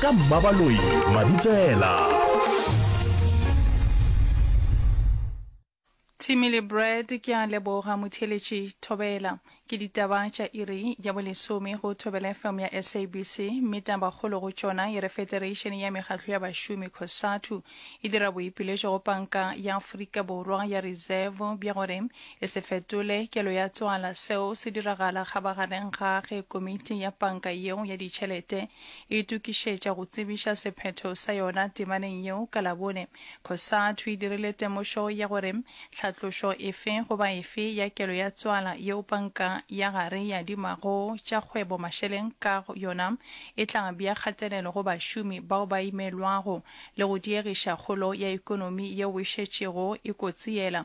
ka mmabaloi mabitsela Timmy le Brad ke a leboga motheletši Thobela. Ke ditaba tša iri ya bolesome go Thobela FM ya SABC mme tabakgolo go tšona e re Federation ya Mekgatlo ya Bašomi Cosatu e dira boipiletšo go Panka ya Afrika Borwa ya Reserve bja gore E se fetole kelo ya tswala. Seo se diragala kgabagareng ga ge Komiti ya Panka yeo ya Ditšhelete e itokišetša go tsebiša sephetho sa yona temaneng yeo ka Labone. Cosatu e dirile temošo ya gore tlhatlošo efe goba efe ya kelo ya tswala yeo panka ya gare e adimago tša kgwebo mašeleng ka yona e tla bea kgatelelo go bašomi bao ba imelwago le go diegiša kgolo ya ekonomi yeo e šetšego e kotsiela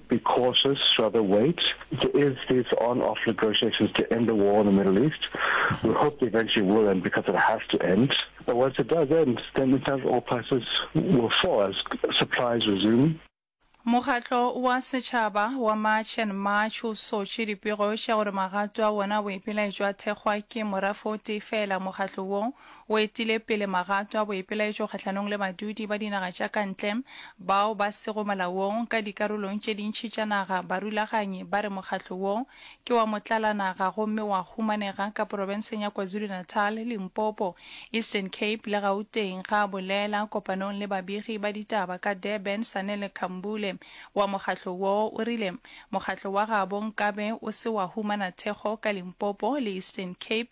Be cautious, rather wait. There is this on-off negotiations to end the war in the Middle East. We hope they eventually will end because it has to end. But once it does end, then in fact oil prices will fall as supplies resume. Mokgatlo wa Setšhaba wa March and March o sotše dipego tša gore magato a wona a boipelaetšo a thekgwa ke morafe o tee feela. Mokgatlo wo O etile pele magato a boipelaetšo kgahlanong le badudi ba dinaga tša ka ntle bao ba sego molaong ka dikarolong tše dintši tša naga. Barulaganyi ba re mokgatlo wo ke wa motlalanaga gomme wa humanega ka porofenseng ya KwaZulu-Natal, Limpopo, Eastern Cape le Gauteng, ga a bolela kopanong le babegi ba ditaba ka Durban. Sanele Khambule wa mokgatlo wo o rile mokgatlo wa gabo nkabe o se wa humana thekgo ka Limpopo le Eastern Cape.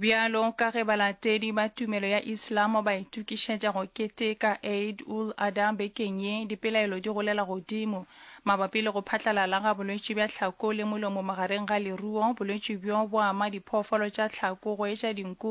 Bjalo ka ge balatedi ba tumelo ya Islam ba itukišetša go keteka Eid ul Adha bekeng ye, dipelaelo di golela godimo mabapi le go phatlalala ga bolwetši bja tlhako le molomo magareng ga leruo. Bolwetši bjo bo ama diphoofolo tša tlhako go etša dinku,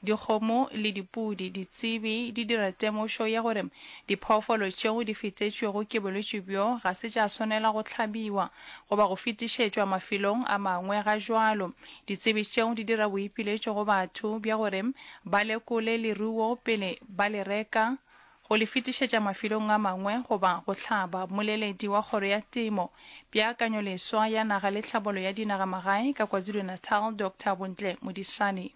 dikgomo le dipudi. Ditsebi di dira temošo ya gore diphoofolo tšeo di fetetšwego ke bolwetši bjo ga se tša swanela go hlabiwa. goba go fetišetšwa mafelong a mangwe. Ga jwalo, ditsebi tšeo di dira boipiletšo go batho bja gore ba lekole leruo pele ba le reka, go le fetišetša mafelong a mangwe goba go hlaba. Mmoleledi wa Kgoro ya Temo, Peakanyoleswa ya Naga le Tlhabolo ya Dinagamagae ka KwaZulu-Natal, Doctor Bontle Modisane,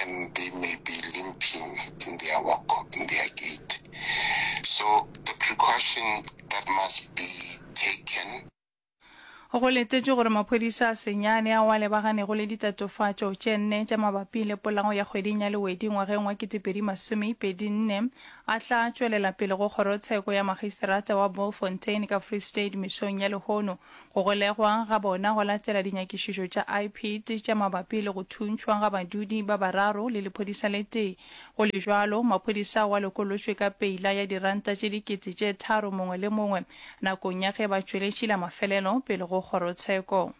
and they may be limping in their walk, in their gait. So the precaution that must be taken Go letetšwe gore maphodisa a senyane ao a lebagannego le ditatofatšo tše nne tša mabapi le polago ya kgweding ya Lewedi ngwageng wa 2024 a tla tšwelela pele go kgorotsheko ya makgiseterata wa Bultfontein ka Free State mesong ya lehono Go golegwa ga bona go latela dinyakišišo tša IPID tša mabapi le go thuntšhwa ga badudi ba bararo le lephodisa le tee. Go le bjalo, maphodisa ao a lokolotšwe ka peila ya diranta tše dikete tše tharo mongwe le mongwe nakong ya ge ba tšweletšila mafelelo pele go kgorotsheko.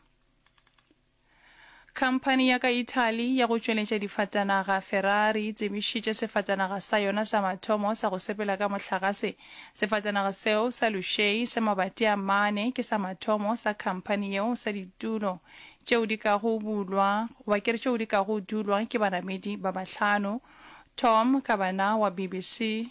Khamphani ya ka Italy ya go tšweletša difatanaga, Ferrari, e tsebišitše sefatanaga sa yona sa mathomo sa go sepela ka mohlagase. Sefatanaga seo sa luxury sa mabati a mane ke sa mathomo sa khamphani yeo sa ditulo tšeo di kago bulwa, goba ke re tšeo di kago dulwa ke banamedi ba bahlano. Tom Kavanagh wa BBC.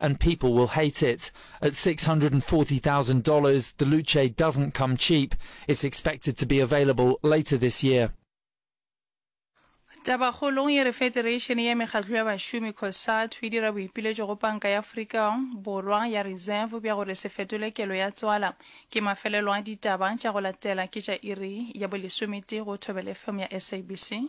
and people will hate it. At $640,000, the Luce doesn't come cheap. It's expected to be available later this year. Tabakgolong e re Federation ya Mekgatlo ya Bašomi, Cosatu, e dira boipiletšo go Panka ya Afrika Borwa ya Reserve bja gore se fetole kelo ya tswala. Ke mafelelo a ditaba tša go latela ke tša iri ya bolesometee go Thobela FM ya SABC.